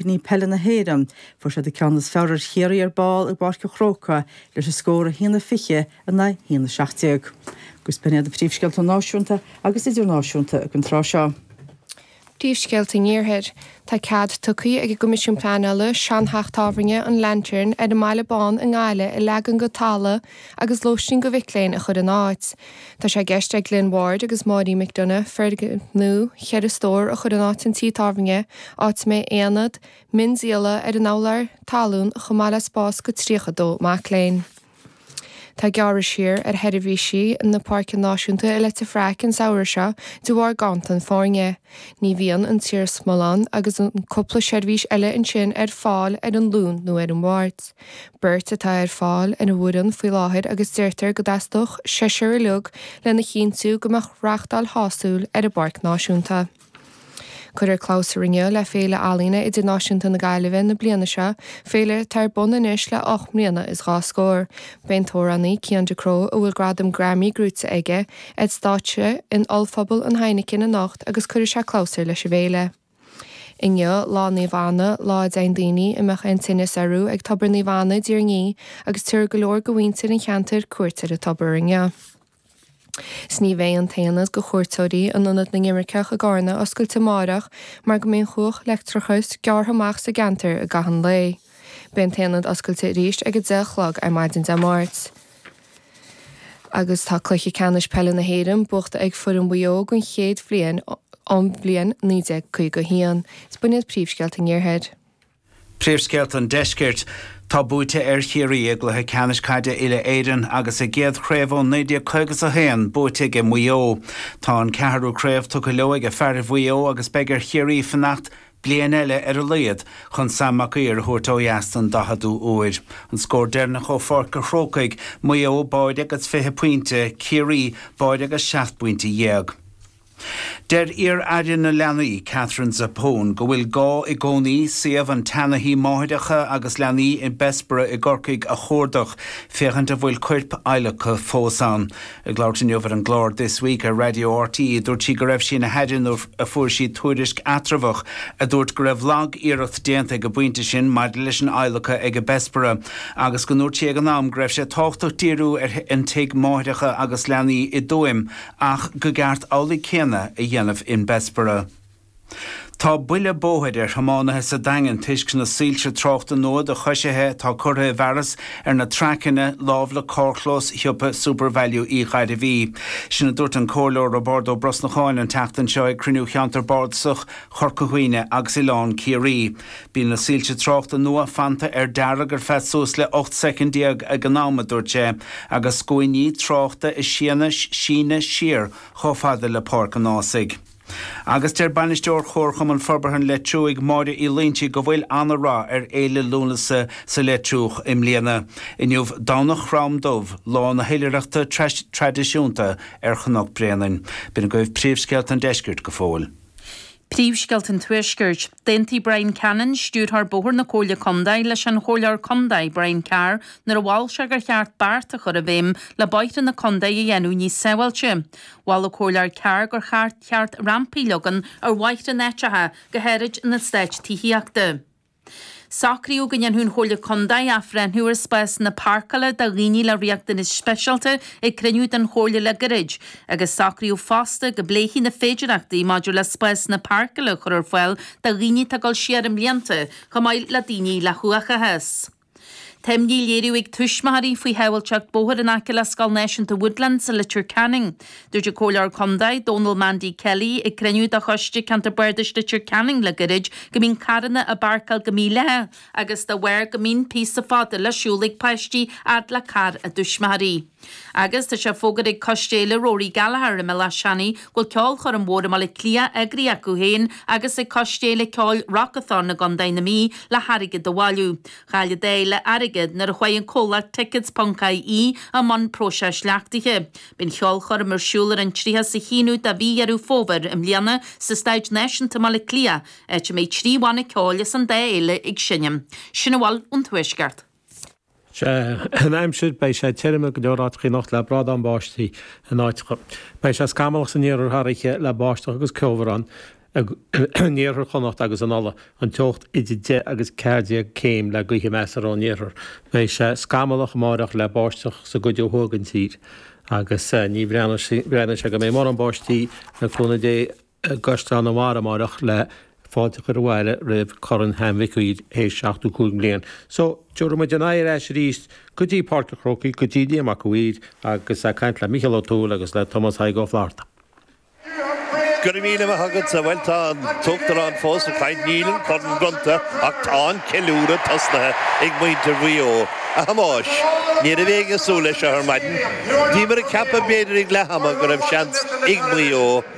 Cuimhní Peile na hÉireann. Fuair siad an ceann is fearr ar Chiarraí ar ball i bPáirc an Chrócaigh leis an scór 1-20 in aghaidh 1-17. Agus b'in iad na príomhscéalta náisiúnta agus idirnáisiúnta ag an tráth seo. Príomhscéalta an Iarthair. Tá cead tugtha ag an gCoimisiún Pleanála seanteach tábhairne an Lantern ar an mBaile Bán i nGaillimh a leagan go talamh agus lóistín do mhic léinn a chur ina áit. Tá sé i gceist ag Glenn Ward agus Máirín McDonagh foirgneamh ceithre stór a chur in áit an tí tábhairne, áit a mbeidh aonad miondíola ar an urlár talún chomh maith le spás do 32 mac léinn. Tá gearradh siar ar sheirbhísí na Páirce Náisiúnta i Leitir Fraic an samhradh seo de bharr ganntan foirne. Ní bhíonn an t-iarsmalann agus an cúpla seirbhís eile ansin ar fáil ar an Luan nó ar an Mháirt. beirt atá ar fáil ar an bhfoireann faoi láthair agus deirtear go dteastódh seisear uilig lena chinntiú go mbeadh reáchtáil shásúil ar an bpáirc náisiúnta. Cuireadh clabhsúr inniu le Féile Ealaíne Idirnáisiúnta na Gaillimhe na bliana seo, féile atá ar bun anois le ocht mbliana is dhá scór. Beidh an t-amhránaí Cian Ducrot, a bhfuil gradam Grammy gnóite aige, ar stáitse in Ollphuball an Heineken anocht agus cuirfidh sé clabhsúr leis an bhféile. Inniu Lá Naomh Anna, lá a dtéann daoine a mbeadh aon tinneas orthu ag Tobar Naomh Anna i dTír an Fhia agus tabharfaidh go leor de mhuintir an cheantair cuairt ar an tobar inniu. 'S ní bheidh an t-aonad do chuairteoirí in Ionad na nImirceach i gCárna oscailte amáireach mar go mbeidh an chumhacht leictreachais gearrtha amach sa gceantar i gcaitheamh an lae. Beidh an t-aonad oscailte arís ag a deich a chlog ar maidin Dé Máirt. Agus tá Cluiche Ceannais Peile na hÉireann buachta ag foireann Mhaigh Eo den chéad bhliain ón bhliain 1951, is b'in iad príomhscéalta an iarthair. Príomhscéalta an deiscirt. Tá buaite ar Chiarraí i gcluiche ceannais caide uile-Éireann agus a gcéad chraobh ó 1951 buaite aige Maigh Eo. Tá an ceathrú craobh tugtha leo aige fearaibh Mhaigh Eo agus beidh ar Chiarraí fanacht Bliain eile ar a laghad chun Sam Mac Uidhir a thabhairt ó dheas den 40ú uair. An scór deireanach ó Pháirc a' Chrócaigh, Maigh Eo, báide agus 20 pointe, Ciarraí, báide agus 17 bpointe. Deir iar-Aire na Leanaí, Katherine Zappone, go bhfuil gá i gcónaí suíomh an tseana-thí máithreacha agus leanaí i mBessborough i gCorcaigh a chuardach féachaint an bhfuil coirp adhlactha fós ann. Ag labhairt inniu ar an gclár This Week ar Raidió RTÉ dúirt sí go raibh sí ina haire nuair a fuair sí tuairisc eatramhach a dúirt go raibh lag-iarracht déanta ag an bpointe sin maidir leis an adhlacadh aige Bessborough agus go ndúirt sí ag an am go raibh sé tábhachtach díriú ar an tigh máithreacha agus leanaí i dTuaim ach go gceart amhlaidh céanna a dhéanamh in Bessborough. Tá buile bóthair ar thiománaithe sa Daingean toisc na soilse tráchta nua do choisithe atá curtha i bhfearas ar na traiceanna lámh le carrchlós shiopa Supervalu Uí Ghairbhí. Sin a dúirt an Comhairleoir Roibeárd Ó Brosnacháin an tseachtain seo ag cruinniú Cheantar Bardasach Chorca Dhuibhne agus Oileán Ciarraí. Bíonn na soilse tráchta nua fanta ar dearg ar feadh suas le 18 soicind ag an am, a dúirt sé, agus scuainí tráchta ag síneadh siar chomh fada le Páirc an Ághasaigh. Agus deir Bainisteoir Chomharchumann Forbartha an Leitriúigh, Máire Uí Loinsigh, go bhfuil ana rath ar Fhéile Lúnasa sa Leitriúch i mbliana. Inniu Domhnach Chrom Dubh, lá na hoilithreachta traidisiúnta ar Chnoc Bréanainn. B'in agaibh príomhscéalta an deiscirt go fóill. Príomhscéalta an tuaiscirt. D'aontaigh Bryan Cannon, Stiúrthóir Bóthar na Comhairle Contae, leis an Chomhairleoir Contae, Brian Carr, nuair a mhol sé gur cheart beart a chur i bhfeidhm le bóithre na contae a dhéanamh níos sábháilte. Mhol an comhairleoir Carr gur cheart ceart rampaí a leagan ar bhóithre in áiteacha go háirid in eastáit tithíochta. Socraíodh go ndéanfadh an Chomhairle Contae athbhreithniú ar spásanna páirceála do dhaoine le riachtanais speisialta ag cruinniú den Chomhairle le gairid agus socraíodh fosta go bpléifí na féidearthachtaí maidir le spásanna páirceála a chur ar fáil do dhaoine atá ag dul siar i mblianta chomh maith le daoine le huathachas. Tá imní á léiriú ag tuismitheoirí faoi shábháilteacht bóthair in aice le Scoil Náisiúnta Woodlands i Leitir Ceanainn. Dúirt an Comhairleoir Contae, Dónal Mandy Kelly, ag cruinniú de Choiste Ceantair Bardais Leitir Ceanainn le gairid go mbíonn carranna á bpáirceáil go mídhleathach agus dá bharr go mbíonn píosa fada le siúl ag páistí fhad le carr a dtuismitheoirí. Agus tá sé fógartha ag Coiste Fhéile Rory Gallagher i mBéal Átha Seanaidh go bhfuil ceolchoirm mhór i mBaile Átha Cliath eagraithe acu féin agus ag Coiste Fhéile Ceoil Rockathon i gContae na Mí le hairgead a bhailiú. Chaill an dá fhéile airgead nuair a chuaigh an comhlacht Tickets ponc ie i mbun próiseas leachtaithe. Beidh an cheolchoirm ar siúl ar an 31ú de mhí Dheireadh Fómhair i mbliana sa Staid Náisiúnta i mBaile Átha Cliath, áit a mbeidh trí bhanna ceoil as an dá fhéile ag seinm. Sin a bhfuil ón Tuaisceart. sé an aimsir, beidh sé tirim i ngo leor áiteachaí anocht le brádán báistí in áiteacha. Beidh sé scamallach san iarthar thar oíche le báisteach agus ceobhrán in iarthar Chonnacht agus in Uladh, an teocht idir 10 agus 14 céim le gaoithe measartha ón iarthar. Beidh sé scamallach amáireach le báisteach sa gcuid ó thuaidh den tír agus ní bhreathnaíonn sé go mbeidh mórán báistí le cúnamh Dé. i gCaisleán an Bharra amárach le fáilte a chur abhaile roimh Chorn Sam Mhic Uidhir théis 75 bliain. So, tabharfaidh muid ár n-aghaidh ar ais arís go dtí Páirc an Chrócaigh, go dtí Liam Mac an Mhaoir agus ag caint le Micheál Ó Tuathail agus le Tomás Thaidhg Ó Flaithearta. Go raibh míle maith agatsa. Bhuel, tá an tUachtarán fós ag caint. Níl an corn bronnta ach tá an ceiliúradh tosnaithe ag muintir Mhaigh Eo. A Thomáis, ní raibh éinne ag súil leis seo ar maidin. Bhíomar ag ceapadh, b'fhéidir ag leath ama, go raibh seans ag Maigh Eo.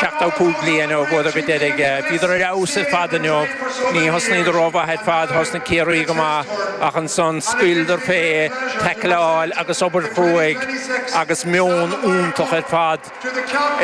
75 bliain ó bhuadar go deiridh. Bhíodar ar fheabhas ar fad inniu. Ní thosnaíodar rómhaith ar fad, thosnaigh Ciarraí go maith ach ansan scaoileadar fé, taicleáil agus obair chruaidh agus meon iontach ar fad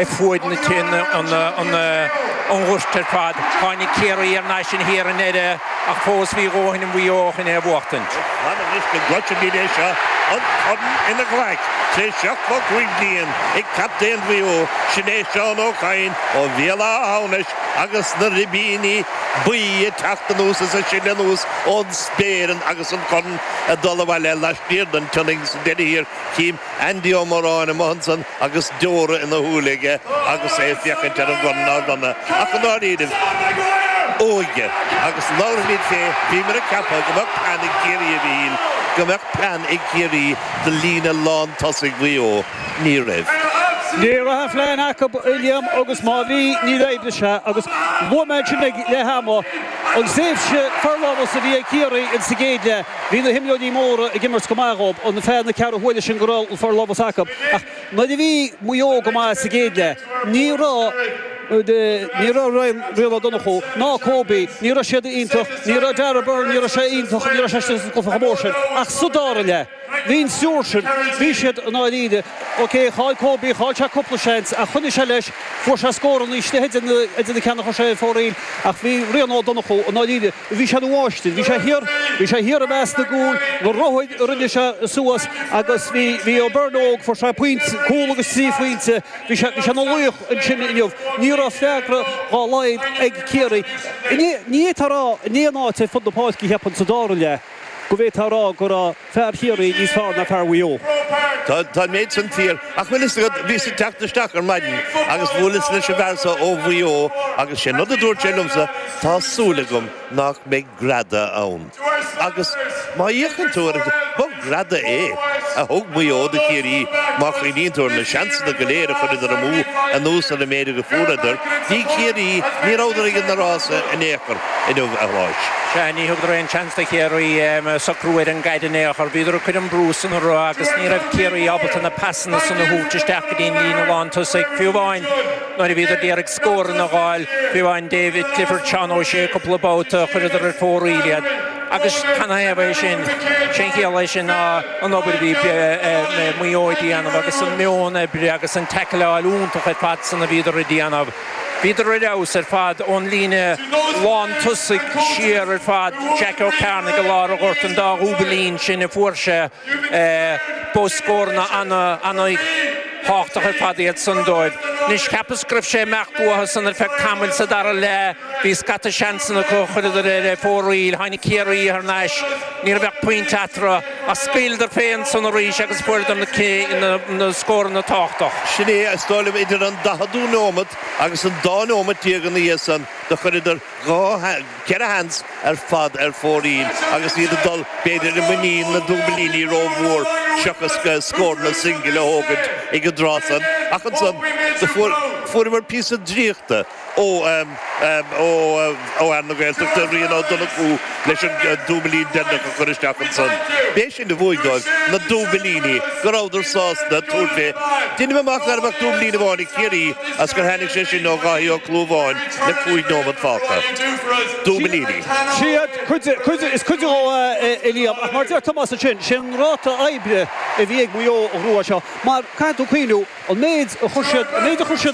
ar fuaid na tine, an ghoirt ar fad. Tháinig Ciarraí ar n-ais in thiar i ndeireadh ach fós bhí dóthain i Maigh Eo chun é a bhuachtaint. Is maith liom anois go gcloisimid é seo, an corn ina ghlaic, tar éis seachtó cúig bliain. ag captaen Mhaigh Eo, sin é Seán Ó Cadhain ó Bhéal Átha hAmhnais agus na ribíní buí ag teacht anuas is ag sileadh anuas ón spéir agus an corn ag dul abhaile laistiar den tSionainn agus sa deireadh thiar, chím Andy Ó Móráin amuigh ansan agus deora ina shúile aige agus é ag féachaint ar an gcorn á bhronnadh ach i ndáiríribh. óige agus labhraimid fé, bhíomar ag ceapadh go mbeadh plean ag Ciarraí a Mhichíl, go mbeadh plean ag Ciarraí. do líne lán tosaigh Mhaigh Eo, ní raibh. Ní raibh aon phlean acu a Liam agus má bhí, níor oibrigh sé agus luaigh mé ansin ag leath ama. An tréimhse forlámhas a bhí ag Ciarraí ins an gcéad leath, bhí na himreoirí móra ag imirt go maith dhób. Ar feadh na ceathrú huaire sin go raibh an forlámhas acu ach. Nuair a bhí Maigh Eo go maith sa gcéad leath, ní raibh Rian Ó Donnchú ná Kobe, ní raibh siad iontach, ní raibh Darragh Beirne, ní raibh sé iontach, ní raibh sé sa gcluiche chomh mór sin, ach sa dara leath, bhí an triúr sin, bhí siad i ndáiríre. Ok, chaill Kobe, chaill sé cúpla seans, ach choinnigh sé leis, fuair sé scóranna istigh idir na ceanna a chuir sé ar fóraoil, ach bhí Rian Ó Donnchú i ndáiríre. Bhí sé ina mháistir. Bhí sé thiar, bhí sé thiar i measc na gcúl, na ruthaig a rinne sé suas agus bhí, bhí Ó Beirn óg, fuair sé pointe, cúl agus trí phointe, bhí sé, bhí sé ina laoch ansin inniu. Ní raibh freagra dá laghad ag Ciarraí. Ní fhéadfá a rá in aon áit ar fud na páirce, cheapfainn, sa dara leath go bhféadfá a rá go raibh, fear Chiarraí níos fearr ná fear Mhaigh Eo. Tá an méid sin fíor. Ach bhfuil fhios agat, bhíos ag teacht isteach ar maidin agus bhuaileas leis an bhfear seo ó Mhaigh Eo agus sé'n rud a dúirt sé liomsa, tá súil agam nach mbeidh greadadh ann. Agus má fhéachann tú ar an, ba ghreadadh é a thug Maigh Eo do Chiarraí má chuimhníonn tú ar na seansanna go léir a chuireadar amú anuas ar an méid agus a fuaireadar. Ní Ciarraí, ní rabhadar ag na rásaí in aon chor. inniu, a Thomáis. Sea, ní thugadar aon tseans do Chiarraí socrú ar an gcaid in aon chor. Bhíodar ag cur an brú san orthu agus ní raibh Ciarraí ábalta na pasanna san a thabhairt isteach go dtí an líne lántosaigh, fiú amháin nuair a bhíodar d'iarraidh scóranna a gháil. Fiú amháin David Clifford, Seán Ó Sé cúpla babhta, chuireadar ar fóraoil iad. Agus canathaobh é sin? Sé'n chiall leis sin ná an obair a bhí Maigh Eo a' déanamh agus an meon oibre agus an teaicleáil iontach ar fad san a bhíodar a' déanamh. Bhíodar ar fheabhas ar fad ón líne lántosaigh siar ar fad, Jack Ó Cearnaigh go lár an ghoirt an dá dhúbilín sin a fuair sé. Ba scóranna an-thábhachtacha ar fad iad san dóibh. Anois, cheapas go raibh sé ag imeacht uathu san ar feadh tamaill sa dara leath. Bhí scata seansanna acu, chuireadar ar fóraoil, tháinig Ciarraí thar n-ais, ní raibh ach pointe eatarthu. Ach scaoileadar féin san arís agus fuaireadar na scóranna tábhachtacha. Sin é is dóigh liom, idir an daicheadú nóimeat agus an dá nóimeat déag ina dhiaidh san, do chuireadar dhá, cheithre sheans ar fad ar fóraoil agus iad ag dul, b'fhéidir, i muinín na ndúbilíní rómhór seachas scóranna singil a thógaint ag an dtráth san. Ach ansan, do fuaireamar píosa draíochta. ó fhear na Gaeltachta, Rian Ó Donnchú, leis an dúbilín deireanach a chur isteach ansan. B'é sin a bhuaigh dóibh, na dúbilíní, go rabhadar sásta tabhairt fé. Deinim amach ná raibh ach dúbilín amháin ag Ciarraí is gur tháinig sé sin ó Dháithí Ó Clúmháin le cúig nóimeat fágtha. Dúbilíní. Siad cuid de, cuid, is cuid de é Liam, ach mar deir Tomás ansin, sé an ráta oibre a bhí ag Maigh Eo an uair seo, mar caithfidh tú cuimhniú, an méid a chuir siad, an méid a chuir siad,